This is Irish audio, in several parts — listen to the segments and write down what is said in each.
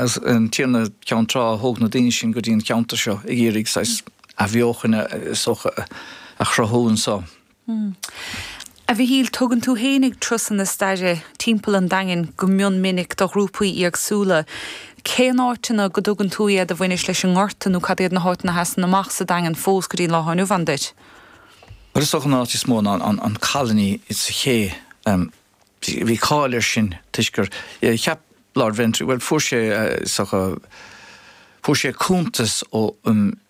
is an Tiarna Ceann Trá a thóg na daoine sin go dtí an cheantar seo ag iarraidh saghas athbheochan is dócha a chruthú anseo. A Mhichíl, tugann tú fhéinig turasanna staire timpeall an Daingin go mion minic do ghrúpaí éagsúla. Cén áiteanna go dtugann tú iad a bhaineas leis an nGorta nó cad iad na háiteanna a sheasann amach sa Daingean fós go dtí an lá atá inniu ann duit? Bhuel is dócha an áit is mó ná an Colony sa ché. bhí cáil ar sin toisc gur cheap Lord Ventry, bhuel fuair sé, fuair sé cuntas ó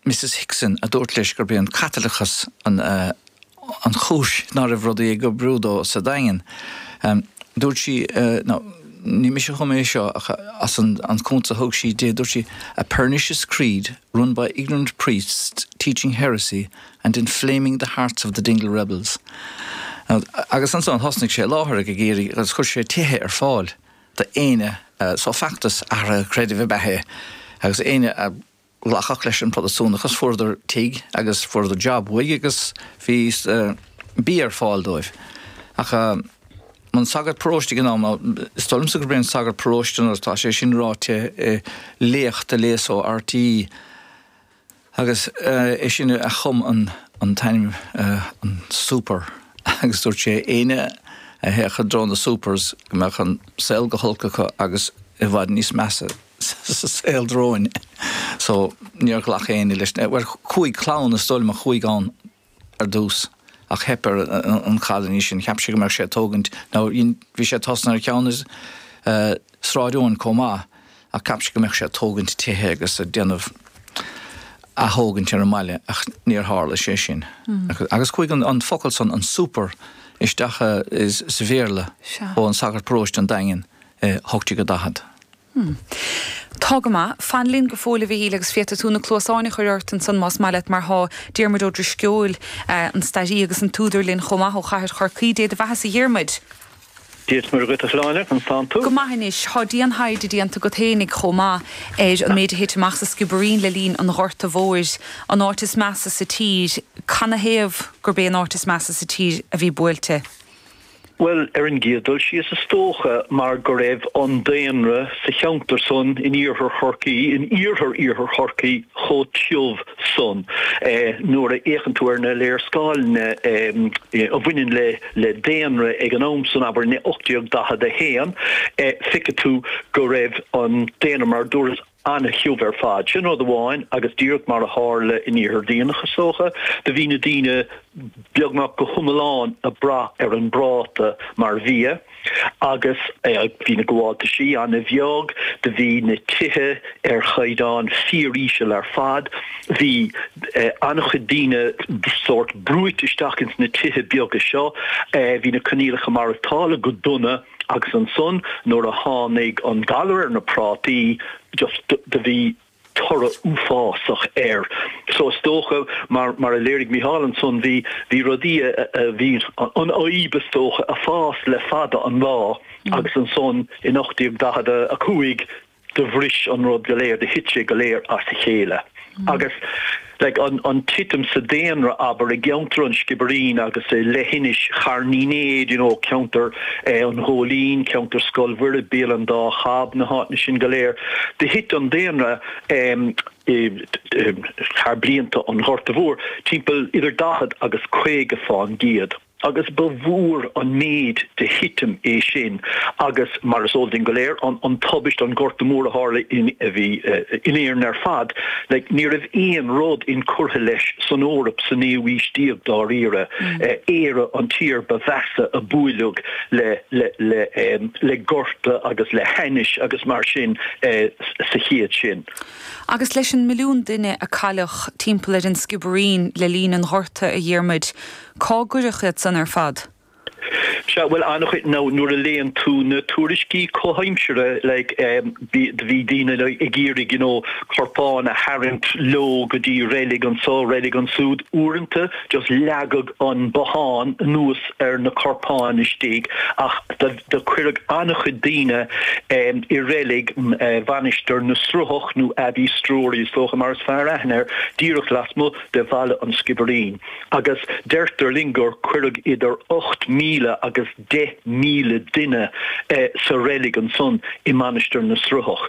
Mrs Hickson a dúirt leis gurb é an Caitliceachas an, an chúis ná raibh rudaí ag oibriú dó sa Daingean. Dúirt sí, ó ní mise a chum é seo ach as an, an cuntas a thug sí dó, dúirt sí, a pernicious creed run by ignorant priests teaching heresy and inflaming the hearts of the Dingle rebels'. Agus ansan thosnaigh sé láithreach ag iarraidh, agus chuir sé tithe ar fáil d'éinne, so feachtas athraithe creidimh ab ea é, agus éinne a ghlacfadh leis an Protastúnachas fuaireadar tigh agus fuaireadar job uaidh agus bhí bia ar fáil dóibh. Ach an sagart paróiste ag an am ná is dóigh liomsa gurb é an sagart paróiste mar tá sé sin ráite i léacht a léas ó RT, Agus é sin a chum an t-ainm an Souper agus dúirt sé éinne a théadh i dtreo the Soupers go mbeadh an saol go holc acu agus i bhfad níos measa sa saol romhainn. So níor ghlac éinne leis. Bhuel, cúig clann is dóigh liom a chuaigh ann. ar dtús, ach theip ar an Cholony sin. Cheap sé go mbeadh sé ag tógaint nó bhí sé ag tosnú ar cheann is Sráid Eoin chomh maith ach cheap sé go mbeadh sé ag tógaint tithe agus ag déanamh ath-thógaint ar an mbaile ach níor tharla sé sin. Agus chuaigh an focal san, an Souper, isteach sa Bhéarla ó shagart paróiste an Daingin i 1840. Hmm. Tá go maith. Fan linn go fóill, a Mhichíl, agus féadfaidh tú na cluasáin a chur ort ansan más maith leat, mar tá Diarmuid Ó Drisceoil, an stairí agus an t-údar linn chomh maith ó chathair Chorcaí. Dé do bheathasa a Dhiarmuid! Dia is Muire dhuit a Shláine, conas tánn tú? Go maith anois. Tá dian-thaighde déanta agat fhéinig chomh maith ar an méid a thit amach sa Sciobairín le linn an Ghorta Mhóir, an áit is measa sa tír. Canathaobh gurb é an áit is measa sa tír a bhí buailte? Bhuel, ar an gcéad dul síos is dócha mar go raibh an daonra sa cheantar san in iarthar Chorcaí, in iarthar iarthar Chorcaí, chomh tiubh san. Nuair a fhéachann tú ar na léarscáileanna a bhaineann le daonra ag an am san, abair in 1841, feicfidh tú go raibh an daonra mar a dúras, An-tiubh ar fad. Sin rud amháin agus díreach mar a tharla in Iarthar Duibhneach is dócha, do bhí na daoine beagnach go hiomlán ag brath ar an bpráta mar bhia agus bhí na gabháltaisí an-bheag, do bhí na tithe ar chaighdeán fíor-íseal ar fad, bhí an-chuid daoine sórt brúite isteach ins na tithe beaga seo, bhí na coinníollacha maireachtála go dona. Agus ansan nuair a tháinig an galar ar na prátaí just do bhí toradh uafásach air. So is dócha mar, mar a léirigh Mícheál ansan, bhí, bhí rudaí a, a, bhí an fhadhb is dócha a' fás le fada an lá agus ansan in 1845 do bhris an rud go léir, do thit sé go léir as a chéile. Agus like an titim sa daonra abair i gceantar an Sciobairín agus i leithinis Charn Uí Néid you know ceantar eh an Ghóilín, ceantar Scoil Mhuire, Béal an Dá Chab, na háiteanna sin go léir, do thit an daonra em i thar blianta an Ghorta Mhór timpeall idir daichead agus caoga fán gcéad. agus ba mhór an méid de thitim é sin agus, mar is eol duinn go léir, an tubaist, an gorta mór a tharla a bhí in Éirinn ar fad, ní raibh aon rud incurtha leis san Eoraip sa naoú haois déag, dáiríre. Éire an tír ba mheasa a buaileadh le gorta agus le hainnise agus mar sin sa chéad sin. Agus leis an milliún duine a cailleadh timpeall ar an Sciobairín le linn an ghorta, a Dhiarmuid, Cár cuireadh iad san ar fad? Sea, bhuel, an-chuid nó nuair a léann tú na tuairiscí comhaimseartha like bhí daoine ag iarraidh you know corpáin a tharraingt leo go dtí reilig anseo, reilig ansúid, uaireanta just leagadh an bothán anuas ar na corpáin istigh ach do cuireadh an-chuid daoine i reilig Mhainistir na Sruthach nó Abbeystrewry is dócha mar is fearr aithne air, díreach lasmuigh de Bhaile an Sciobairín. agus deirtear linn gur cuireadh idir 8,000 agus 10,000 duine sa reilig ansan i Mainistir na Sruthach.